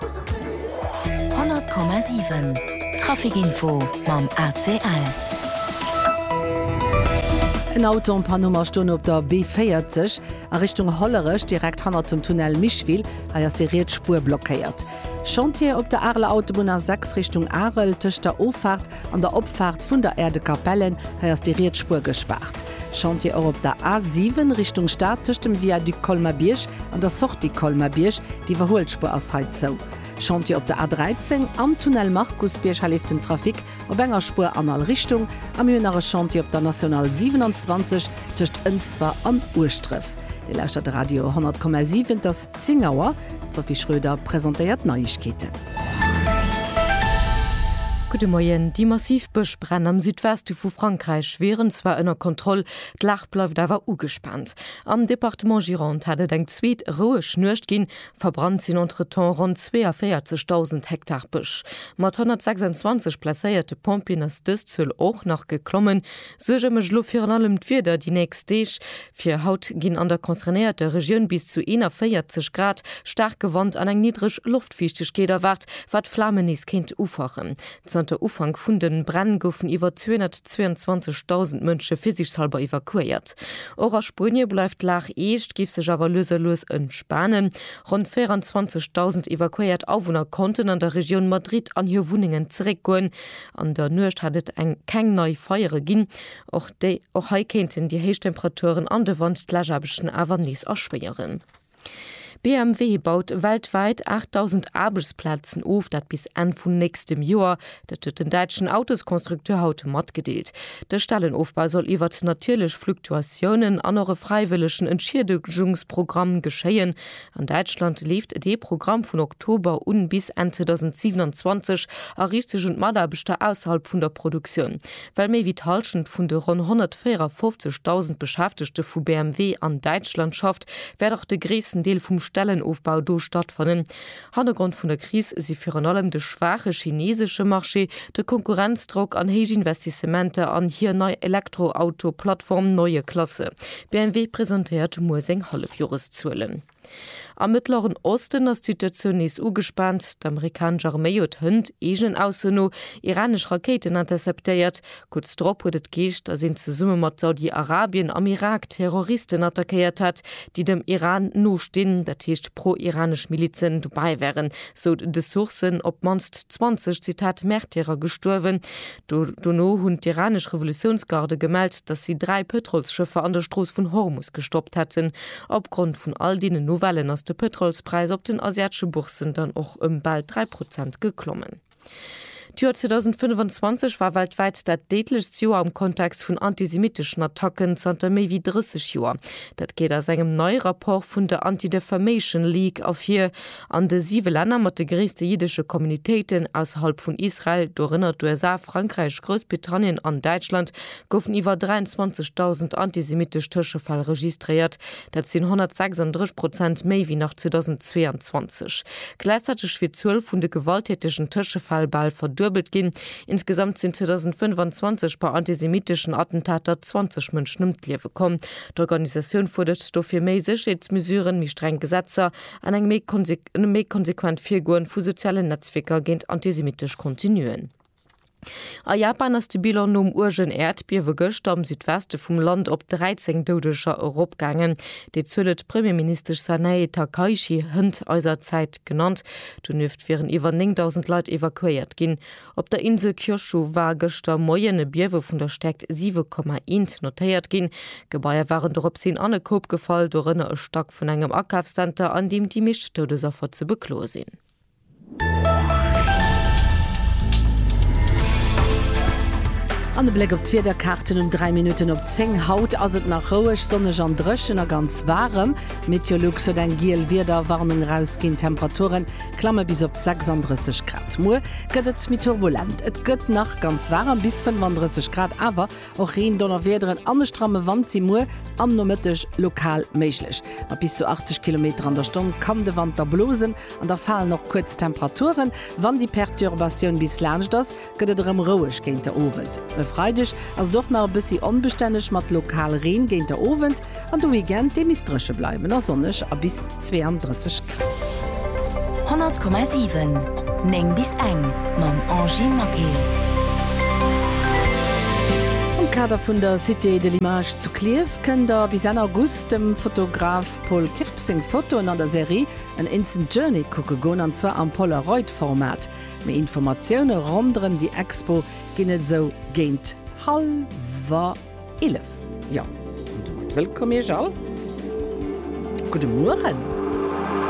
100,7 Trafic-Info mam ACL. En Auto en panne um a stoung op der B40 a Richtung Hollerech direkt hannert dem Tunnel Micheville. Hei ass déi riets Spuer blockéiert. Chantier op der Areler Autobunn A6 Richtung Arel, tëscht der Offaart an der Opfaart vun der Aire de Capellen. Hei ass déi riets Spuer gespaart. Chantier och op der A 7 Richtung Stad tëscht dem Viaduc Colmar-Bierg an der Sortie Colmar-Bierg, d'Iwwerhuelspuer ass hei zou. Chantier op der A 13 am Tunnel Markusbierg, hei leeft den Trafic op enger Spuer an all Richtung. A mir hunn nach e Chantier op der National 27 tëscht Ënsber an Ueschdref. Dir lauschtert Radio 100,7, et ass. 10 Auer, D'Sophie Schröder presentéiert d'Neiegkeeten. Gudde Moien, Déi massiv Bëschbränn am Südweste vu Frankräich wieren zwar ënner Kontroll, d'Lag bleift awer ugespaant. Am Departement Gironde hat et eng zweet roueg Nuecht ginn. Verbrannt sinn entretemps ronn 42.000 Hektar Bësch. Mat 126 blesséierte Pompjeeën ass dës Zuel och nach geklommen. Suerge mécht elo virun allem d'Wieder déi nächst Deeg. Fir haut ginn an der concernéierter Regioun bis zu 41 Grad, staarke Wand an eng niddreg Loftfiichtegkeet erwaart, wat d'Flamen nees kéint ufachen. Zanter Ufank vun de Bränn goufen iwwer 222.000 Mënsche virsiichtshallber evakuéiert. Och a Spuenie bleift d'Lag eescht, géif sech awer lues a lues entspanen. Ronn 24.000 evakuéiert Awunner konnten an der Regioun Madrid an hir Wunnengen zeréckgoen. An der Nuecht hat et eng keng nei Feiere ginn. Och déi och hei kéinten déi héich Temperaturen an de Wand d'Läschaarbechten awer nees erschwéieren. BMW baut weltwäit 8.000 Aarbechtsplazen of, dat bis Enn vun nächstem Joer. Dat huet den däitschen Autosconstructeur haut matgedeelt. De Stellenofbau soll iwwert natierlech Fluktuatiounen an och e fräiwëllegen Entschiedegungsprogramm geschéien. An Däitschland leeft dee Programm vun Oktober un bis Enn 2027 a riicht sech un d'Mataarbechter ausserhalb vun der Produktioun. Well méi wéi d'Hallschent vun de ronn 154.000 Beschäftegte vu BMW an Däitschland schafft, wäert och de gréissten Deel vum Stellenofbau do stattfannen. Hannergrond vun der Kris si virun allem de schwaache chineesesche Marché, de Konkurrenzdrock an héich Investissementer an hir nei Elektroauto-Plattform Neue Klasse. BMW presentéiert muer seng Hallefjoreszuelen. Am Mëttleren Osten ass d'Situatioun nees ugespaant. D'Amerikanesch Arméi huet hënt eegenen Ausso no iranesch Rakéiten interceptéiert. Kuerz drop huet et geescht, datt een zesumme mat Saudi-Arabien am Irak Terroristen attackéiert hätt, déi dem Iran nostinn, dat heescht pro-iranesch Milizen dobäi wären, sou de Sourcen. Op d'mannst 20, Zitat, Märtyrer gestuerwen. Dono hunn d'iranesch Revolutiounsgarde gemellt, datt si dräi Pëtrolsschëffer an der Strooss vun Hormus gestoppt hätten. Opgrond vun all deenen Nouvellen ass de Pëtrolspräis op den asiatesche Bourssen dann och ëm bal dräi Prozent geklommen. D'Joer 2025 war weltwäit dat déidlechst Joer am Kontext vun antisemitteschen Attacken zanter méi wéi 30 Joer. Dat geet aus engem neie Rapport vun der Anti-Defamation League ervir. An de siwe Länner mat de gréisste jiddesche Communitéiten ausserhalb vun Israel, dorënner d'USA, Frankräich, Groussbritannien an Däitschland, goufen iwwer 23.000 antisemittesch Tëschefäll registréiert. Dat sinn 136 Prozent méi wéi nach 2022. Gläichzäiteg wier d'Zuel vun de gewalttätegen Tëschefäll bal verduebelt ginn. Insgesamt sinn 2025 bei antisemitteschen Attentater 20 Mënschen ëm d'Liewe komm. D'Organisatioun fuerdert dofir méi Sécherheetsmesuren, méi streng Gesetzer, an eng méi konsequent Virgoen vu sozialen Netzwierker géint antisemittesch Contenuen. A Japan ass de Bilan nom uergen Äerdbiewe gëschter am Südweste vum Land op 13 Doudeger eropgaangen. Déi Zuel huet d'Premierministesch Sanae Takaichi Hënt eiser Zäit genannt. Donieft wieren iwwer 9.000 Leit evakuéiert ginn. Op der Insel Kyushu war gëschter Moien e Biewe vun der Stäerkt 7,1 notéiert ginn. Gebaier waren doropshin an e Koup gefall, dorënner e Stack vun engem Akafszenter, an deem déi meescht Doudesaffer ze bekloe sinn. An e Bléck op d'Wiederkaarten um 3 Minutten op 10. Haut ass et nach roueg, sonneg an dréchen a ganz waarem. Meteolux huet eng giel Wiederwarnung erausginn. D'Temperature Klamme bis op 36 Grad. Muer gëtt et méi turbulent. Et gëtt nach ganz waarem, bis 35 Grad, awer och Reen, Donnerwiederen an e stramme Wand si muer am Nomëtteg lokal méiglech. Mat bis zu 80 Kilometer an der Stonn kann de Wand da blosen an da falen och kuerz Temperaturen, wann déi Perturbatioun bis laanscht ass. gëtt et erëm roueg géint de Owend. E Freideg ass et och nach e bëssi onbestänneg mat lokal Reen géint de Owend an de Weekend dee misst dréche bleiwen a sonneg a bis 32 Grad. 100,7 9 bis eng mam Angie Maquet. Am Kader vun der Cité de l'image zu Klierf kënnt der bis Enn August dem Fotograf Paul Kirp seng Fotoen an der Serie An Instant Journey kucke goen, an zwar am Polaroid-Format. Méi Informatioune ronderëm déi Expo ginn et esou géint hallwer 11. Jo, an domat wëllkomm Iech all. Gudde Mueren.